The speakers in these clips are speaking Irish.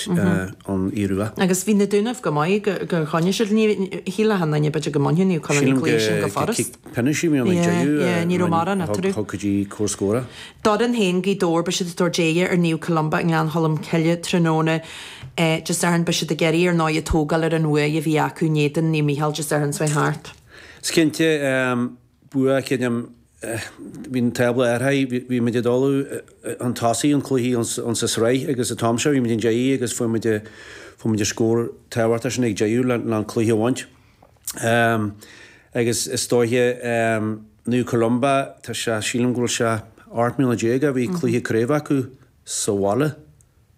an Iorua. Agus bhí na Dúnaibh, go mba gur choinnigh siad, shíl achan nduine b'fhéidir go mbainfeadh Naomh Conaill an cluiche sin go furast. Yeah, ní raibh mórán eatarthu. Thug go dtí cúig scór. D'fhoireann féin, Gaoth Dobhair, beidh siad ag tabhairt aghaidh ar Naomh Columba i nGleann Cholm Cille tráthnóna Dé Sathairn, beidh siad ag iarraidh ar ndóigh ag tógáil ar an bhuaidh a bhí acu in éadan Naomh Micheál Dé Sathairn seo thart. Is cinnte Bua cinnte, Bhí an tábla athraithe, bhí muid ag dul chun tosaigh an cluichí ann sa sraith agus an t-am seo bhí muid ina ndiaidh agus fuair muid an scór tábhachtach sin ag deireadh leis an cluiche a bhaint agus is dóiche Naomh Columba, tá sé, sílim go bhfuil sé 18 mbliana ó bhí cluiche craobh acu sa bhaile.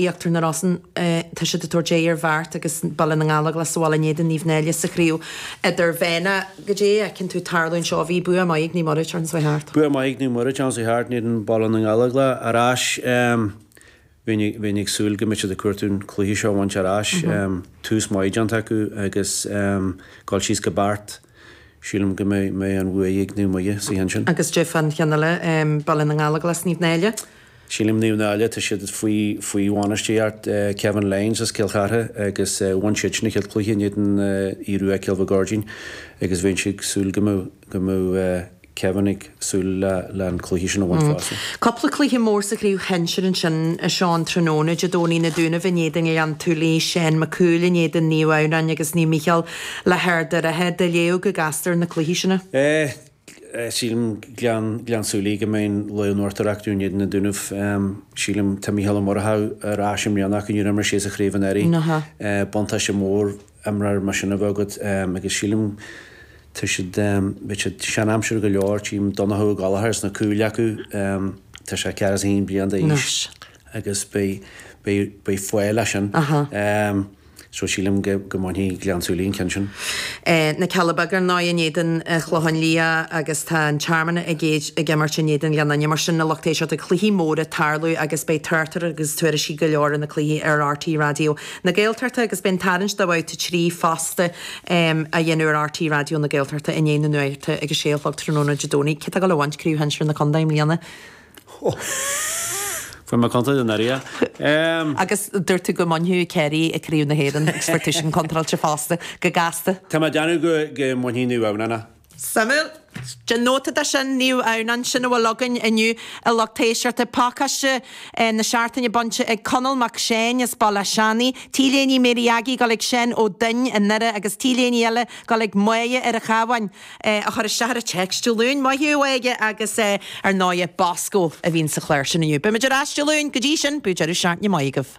Íochtar na Rosann. Tá siad ag tabhairt aghaidh ar Bheart agus Baile na nGallóglach sa bhaile in éadan Naomh Náille sa chraobh idirmheánach, Goidé a fheiceann tú tarlú anseo? Bhí bua maith ag Naomh Muire tráthnóna seo thart. Bua maith ag Naomh Muire tráthnóna seo thart in éadan Baile na nGallóglach ar ais. Bheinn ag súil go mbeadh siad ag cuartú an chluiche seo a bhaint ar ais. Tús maith déanta acu agus dul síos go Beart. Sílim go mbeidh, mbeidh an bhuaidh ag Naomh Muire sa cheann sin. Agus goidé fán cheann eile Baile na nGallóglach Naomh Náille. Sílim Naomh Náille, tá siad faoi faoi bhainistíocht Kevin Lyons as Cill Chartha agus bhain siad sin a chéad cluiche in éadan Uí Ruairc Cill Mhic Áirdín agus beidh siad ag súil go mbeadh go mbeadh Kevin ag súil le an cluiche sin a bhaint fosta. Cúpla cluiche mór sa chraobh shinsir ansin a Sheáin tráthnóna, Dé Domhnaigh, Na Dúnaibh in éadan Ghleann tSúilí, Seán Mac Cumhaill in éadan Naomh Adhamhnáin agus Naomh Micheál le hArd an Rátha. Déileáil go gasta leis na cluichí sin. Sílim Gleann tSúilí go mbeidh an Laoi an Mhárta ar ais in éadan na nDúnaibh. Sílim tá Micheál Ó Murchadha ar ais i mbliana ach níor imir sé sa chraobh anuraidh. Buntáiste mór. imreoir mar sin a bheith agat agus sílim tá siad, beidh siad sean aimsire go leor, sílim Donnchadh Ó Gallachóir sna cúil acu, tá sé ceathracha is a haon bliain d'aois agus beidh, beidh, beidh faill as sin. So sílim go, go mbainfidh Gleann tSúilí an ceann sin. Na Cealla Beaga ar ndóigh in éadan Chlocháin Liath agus tá an Tearmann ag, ag imirt in éadan Ghleann Fhinne mar sin na lucht éisteachta, cluichí móra tarlú agus beidh tráchtaireacht agus tuairiscí go leor ar na cluichí ar RTÉ Raidió na. na Gaeltachta agus beidh an tarraingt de Bhabhta 3 fosta á dhéanamh ar RTÉ Raidió na Gaeltachta i ndiaidh na nuachta ag a sé a chlog tráthnóna Dé Domhnaigh. Cé tá ag gabháil a bhaint craobh shinsir na Contae i mbliana? Fuair mé contráilte anuraidh. Agus dúirt tú go mbainfeadh Ciarraí craobh na hÉireann agus bhí tú contráilte fosta, go gasta. Tá mé ag déanamh go mbainfidh Naomh Adhamhnáin a. Suimiúil. Déan nóta de sin, níl ann ach am, sin a bhfuil againn inniu a lucht éisteachta. Pacáiste na seachtaine bainte ag Conall mac Seáin as Baile a' Seanaigh, t-léine Mary Aggie ag gabháil ag Seán Ó Duinn i nDoire agus t-léine eile ag gabháil ag Máighe ar a' Chabháin, a chuir isteach an téacs Dé Luain, Máighe a bhí aige agus ar ndóighe, Bosco a bhíonn sa chlár sin inniu. Beimid ar ais Dé Luain, go dtí sin, bíodh deireadh seachtaine maith agaibh.